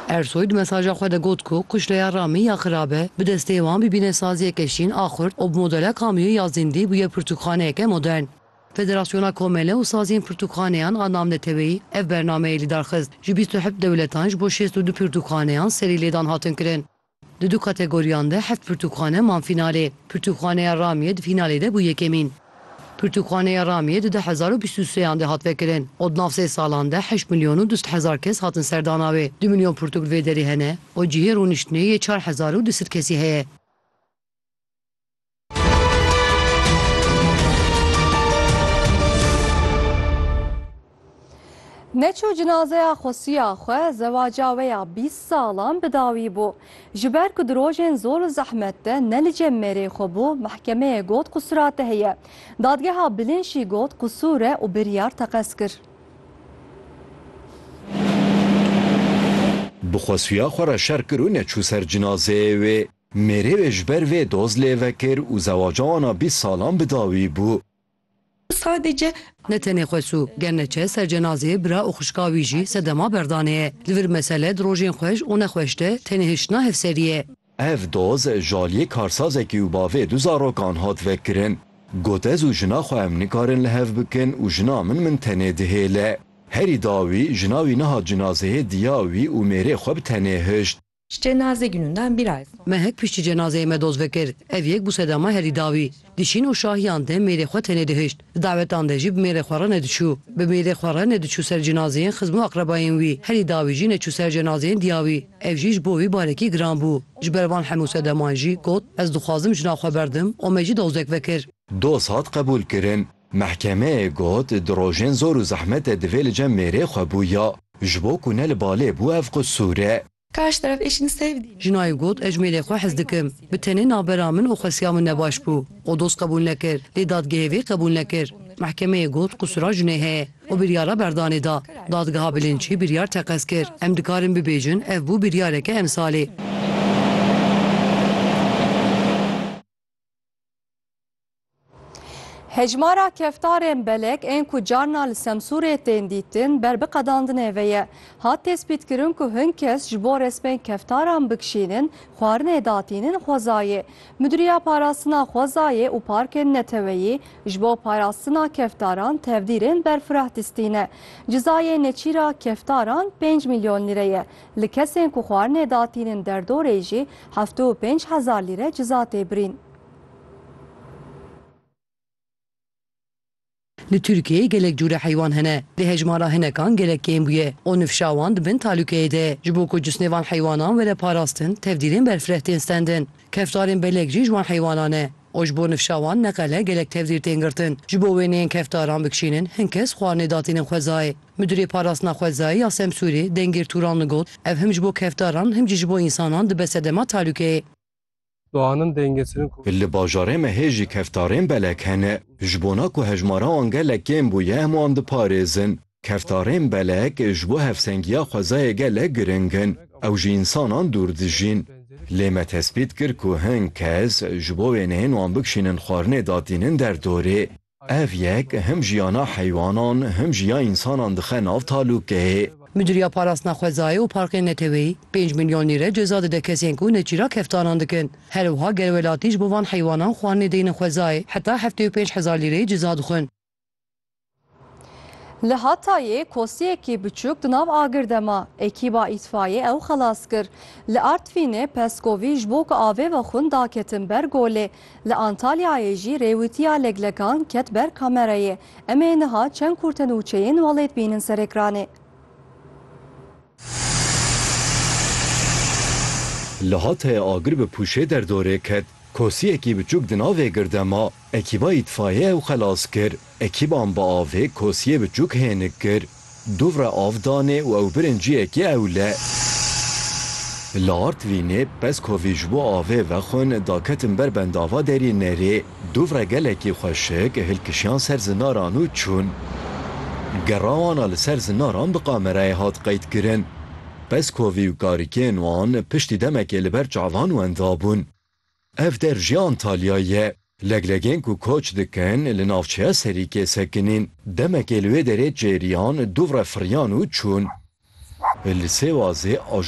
Ersoy di mesaja xwe de got ku quşleya Ramî ya Xirabe bi destê wan bibîne saziyeke şîn a xurt û bi modela Kamîyo ya Zîndî bûye pirtûkxaneyeke modern. Federasyona Komele û Saziyên Pirtûkxaneyan a namneteweyî ev bernameyê lîdarxist. Ji bîst û heft dewletan ji bo şêst û du pirtûkxaneyan serî lêdan hatin kirin. Di du kategoriyan de heft pirtûkxane man fînalê. Pirtûkxaneya Ramiyê di fînalê de bû yekemîn. Pirtûkxaneya Ramiyê di du hezar û bîst û seyan de hat vekirin û di nav sê salan de heşt milyon û du sed hezar kes hatin serdana wê. Du milyon pirtûk li vê derê hene û cihê rûniştinê yê çar hezar û du sed kesî heye. Neçû cinazeya xwesiya xwe zewaca we ya bîst salan bi dawî bû. Ji ber ku di rojên zor û zehmet de ne li cem mêrê xwe bû, mehkemeyê got ku surate heye. Dadgeha Bilin jî got ku sûr e û biryar teqez kir. Bi xwesiya xwe re şer kir û neçû ser cinazeyê wê. Mêrê wê ji ber vê doz lê vekir û zewaca wan a bîst salan bi dawî bû. Sadece. Ne tenê xwe sû, ger ne çe ser cenazeyê bira û xwişka wî jî sedema berdanê ye. Li vir mesele di rojên xweş û nexweş de tenê hiştina hevserî ye. Ev doz ji aliyê karsazekî û bavê du zarokan hat vekirin. Got ez û jina xwe em nikarin li hev bikin û jina min min tenê dihêle. Herî dawî jina wî nihat cinazeyê diya wî û mêrê xwe bi tenê hişt. Ji cenazê Günündan bir ay sonra. Me hek piştî cenazeyê me doz vekir. Ev yek bû sedama herî dawî. Di şîn û şahiyan de mêrê xwe tenê dihişt. Di dawetan de jî bi mêrê xwe re nediçû. Bi mêrê xwe re nediçû ser cenazeyên xizm û aqrebayên wî. Herî dawî jî neçû ser cenazeyên diya wî. Ev jî ji bo wî barekî giran bû. Ji ber van hemû sedaman jî got, Ez dixwazim jina xwe berdim û me jî dozek vekir. Doz hat qebûlkirin. Mehkemeyê got di rojên zor û zehmet de divê li cem mêrê xwe bûya, ji bo ku ne li balê bû ev qisûr e. Jinayê got ez ji mêrê xwe hez dikim, bi tenê navbera min û xwesiya min nebaş bû û doz qebûl nekir, lê dadgehê vê qebûl nekir. Mehkemeyê got qisûra jinê heye û biryara berdanê da. Dadgeha Bilinçî biryar teqez kir, em dikarin bibêjin ev bû biryareke emsalê. Hejmara keftarên belek ên ku carna li Semsûrê tên dîtin ber biqedandinê ve ye. Hat tespîtkirin ku hin kes ji bo resmên keftaran bikişînin xwarinê datînin xwezayê. Midûriya Parastina Xwezayê û Parkên Neteweyî ji bo parastina keftaran tevdîrên berfireh distîne. Cizayê nêçîra keftaran pênc milyon lîre ye. Li kesên ku xwarinê datînin derdorê jî heftê û pênc hezar lîre ciza tê birîn. Li Tirkiyeyê gelek cûre heywan hene. Di hejmara hinekan gelek kêm bûye û nifşa wan di bin talûkeyê de ye. Ji bo ku cisnê van heywanan were parastin, tevdîrên berfireh tên stendin. Keftarên belek jî ji wan heywanan e û ji bo nifşa wan neqele gelek tevdîr tên girtin. Ji bo wêneyên keftaran bikişînin hin kes xwarinê datînin xwezayê. Midurê Parastina Xwezayê ya Semsûrê Dengêr Tûranli got, Ev him ji bo keftaran him jî ji bo însanan dibe sedema talûkeyê. Doanin dêngeçirin ku. Li bajarê me hê jî keftarên belek hene. Ji bona ku hejmara wan gelek kêm bûye em wan diparêzin. Keftarên belek ji bo hevsengiya xwezayê gelek giring in. Ew ji însanan dûr dijîn. Lê me tespît kir ku hin kes ji bo wêneyên wan bikişînin xwarinê datînin derdorê. Ev yek him jiyana heywanan him jî ya însanan dixe nav talûkê. Midûriya Parastina Xwezayê û Parkên Neteweyî pênc milyon lîre ceza dide kesên ku neçîrak keftanan dikin. Her wiha gel welatî ji bo van heywanan xwarinê deynin xwezayê heta heftê û pênc hezar lîreyê ceza dixwin. Li Hatayê kosiyekî biçûk di nav agir de ma, ekîba îtfayê ew xelas kir. Li Artvînê peskovî ji bo ku avê vexwin daketin ber golê, Li Antalyayê jî rêwîtiya leglekan ket ber kamerayê. Em ê niha çend kurte nûçeyên welêt bînin ser ekranê. Li Hatayê agir bi pûşê derdorê ket. Kosiyekî biçûk di navê gir de ma. Ekîba îtfaiyeyê ew xelas kir. Ekîban bi avê kosiyê biçûk hênik kir, dûvre av danê û ew birin ciyekê ewle. Li Artvînê peskovî ji bo avê vexwin daketin ber bendava derînerê, dûvre gelekî xweşik hilkişiyan ser zinaran û çûn. Gera wan a li ser zinaran bi kamerayê hat qeydkirin. Peskovî û karikên wan piştî demekê li ber çavan wenda bûn. Ev der jî Antalya ye. Leglegên ku koç dikin li navçeya Serîkê sekinîn. Demekê li wê derê çêriyan dû re firiyan û çûn. Li Sêwazê